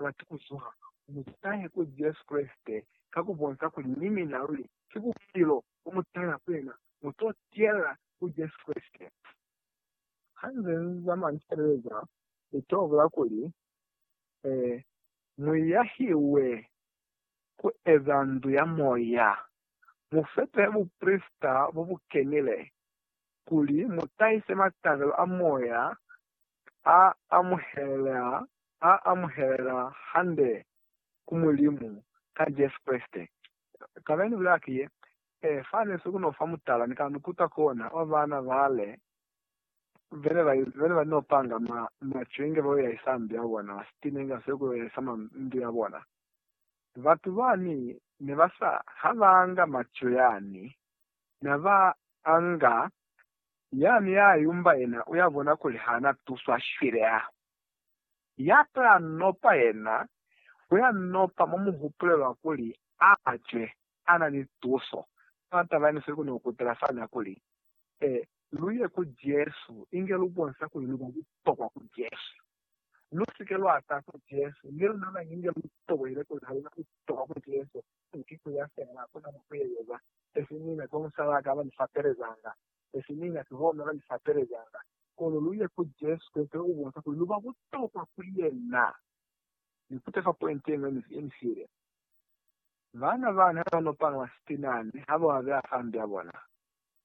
lwaki ku zuha, mi ki tahe ku Jesu Kreste ka ku bonza kuli ni mina luli ki bupilo bo mu tala ku yena, mu to tiyela ku Jesu Kreste. Ha nze ni zama ni sebeza, ni to bula kuli, Ee, mu yahiwe ku eza ndu ya moya, mu fete buprisita bo bu kenile, kuli mu tahise matabelo a moya a amuhelela hande ku Mulimu ka Jesu Kreste. Taba yene bulela ki ye, Ee, fa ne si ku no fa mutala, ni ka mi kuta kona ba bana bale bene ba no panga ma cwenge ba yo yahisa ndu ya bona, ba sitinenga se ku yo yahisa ma ndu ya bona. Batu bani ne ba sa, ha ba nga maco yani, na ba A nga ya mi a yumba yena u ya bona kuli ha na tuswa shwile. A ya to ya nopa yena, u ya nopa mo mu hupulelwa kuli a cwe a na ni tuso. Fa tabani fe ku no kutela fana kuli, E, lu ye ku Jesu inge lu bonsa kuli lu ba butokwa ku Jesu. Lu si ke lwa ta ku Jesu ni luna mañi inge lu tokoile kuli ha lu na butokwa ku Jesu, ki ku ya fela, ku na mo ku ye yoba. Sesi mina ku musalaka ba ni fapelezanga, sesi mina ki hona ba ni fapelezanga. Kono lu ye ku Jesu Kreste u bonsa kuli lu ba butokwa ku yena. Ni kuta fa pointi ye ñwi ye ni file. Baana bani ha ba n'o palama sitinani ha ba beya fambi ya bona,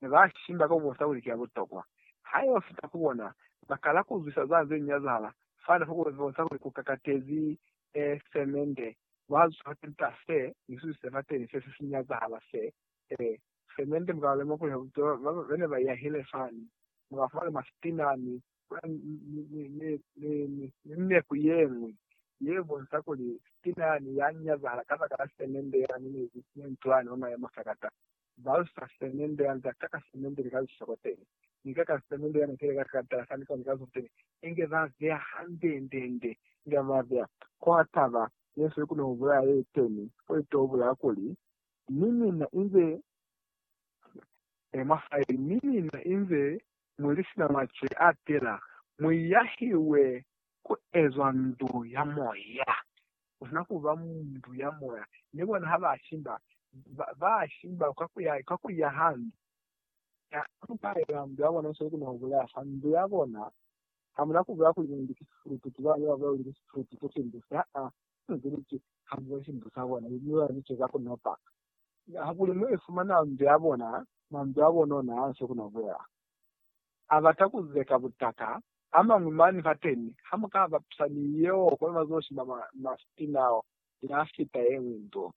ne ba shimba ka ku bonsa kuli ki ya butokwa. Ha yo fita ku bona, ba kala ku zwisa za ze nyazahala fani fa ku bonsa kuli ku kakatezi semende Ba zwa peta se, misuzi se bateni se se si nyazahala se, e, se mende mukaba lemukuhe bupilo bwa ba ne ba yahile fani. Muka fumana mwa sitina ni, ni, ni, ni, ni, ni neku yeñwi ye bonsa kuli sitina yani ya nyazahala kabakala se mende yani ne, ne ntwani mwa mayemo sakata. ba lusa semende ya nzata ka semende lika lusoko teni, ni ka ka semende ya nukele ka sikatala sa niko ni ka zuzu teni, inge ba beya handendende, inge ba beya kwa taba yeswe ku no bulaya ye teni, ko i to bulaya kuli, mi mina inze mwa faili, mi mina inze mwi li sina macwe a tela, mwi yahiwe ku ezwa ndu ya moya, kona kuba muntu ya moya, mi bona ha ba shimba, ba, ba shimba ka ku ya, ka ku ya hande. Ha mu ka eba ndu ya bona, musweli kuna hubulaya fa ndu ya bona. Ha mu na kubulaya kuli mwendi ki sifulutu, ki bana ba bulaya kuli ki sifulutu se si mbuse, haa, ki kuli ki, ha mu boni mbusa bona, mi bona ni ceza ku nopa. Hakuli mu ifumana ndu ya bona, mwa ndu ya bona ona, musweli kuna hubulaya. abata kuzeka butaka amañwi mani fateni hamukaba psa ni yeo kono bazoshiba mastina ao yafita yeñwi nto.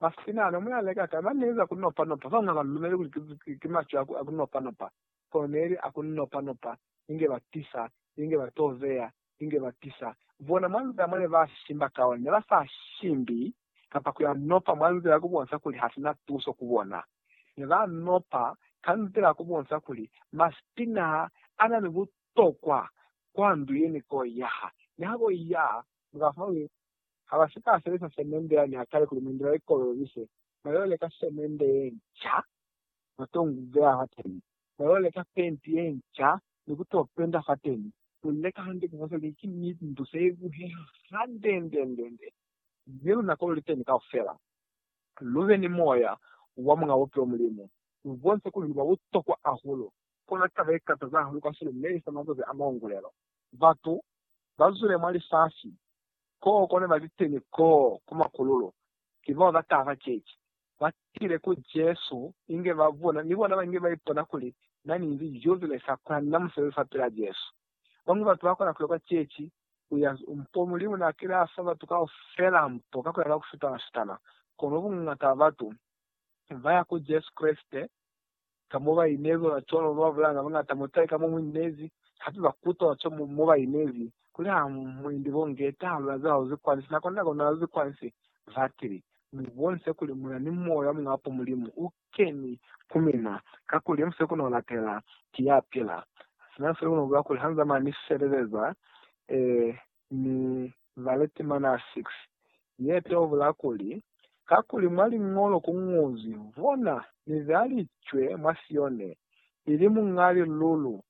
Mastina ano muyaleka kai? Mani neza kunopa nopa. Babañwi habalumeli kuli ki macwe a kunopa nopa, kono neli a kunopa nopa inge ba tisa, inge ba to beya, inge ba tisa. Bona mwa nzila mone ba shimba ka ona, ne ba sa shimbi kapa ku ya nopa mwa nzila ya ku bonsa kuli ha si na tuso ku bona. Ne ba nopa ka nzila ya ku bonsa kuli masiti naa a na ni butokwa kwa ndu ye ni ko yaha. Ne ha bo iya, ne ba fumana kuli ha ba si ka sebelisa semende yani ya kale kuli mwendi ba i kolobise, ba yo leka semende ye nca ba to beya fateni. Ba yo leka fenti ye nca ni ku to penda fateni. Ku leka hande ku bonisa kuli ki ndu se lu heha handendendende, mi luna ko lu li teni kaufela. Lu be ni moya wa Muñ'a Bupilo Mulimu. Lu bonise kuli lu ba butokwa hahulu. Kono taba ye kataza hahulu kasweli ne i sa mazazi a maungulelo. Batu ba zwile mwa lifasi, koo ko ne ba li teni koo ku makululu, ki bao ba taha ceci, ba tile ku Jesu inge ba bona, ni bona ba inge ba ipona kuli na ni inzi jozi le sa kona ni na musebezi fapilaa Jesu. Bañwi batu ba kona ku ya kwa ceci, ku ya mpo Mulimu na kile a fa batu kaufela mpo ka ku ya ka ku fitana-fitana. Kono buñata bwa batu ba ya ku Jesu Kreste ka mo ba inezi ona cwalo ba bulaya na bañata mutali ka mo mu inezi, hape ba kuta ona cwalo mo ba inezi, kuli ha mu indi bo nge taha luna za hauzi kwani, sina kona kona hauzi kwani se, batili, mu bonise kuli muna ni moya muñwi hape Mulimu u keni ku mina, kakuli mu siko no latela, ki ya pila, sina siko no bula kuli ha nzama ni feleleza, ee, ni baletemana 6, ye teubula kuli, Kakuli mwa Liñolo ku ñozwi, Bona, Ni beya licwe mwa Sione, ili Muñ'a Lilulu,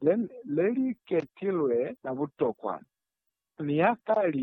le li ketilwe la butokwa, mi ya ka li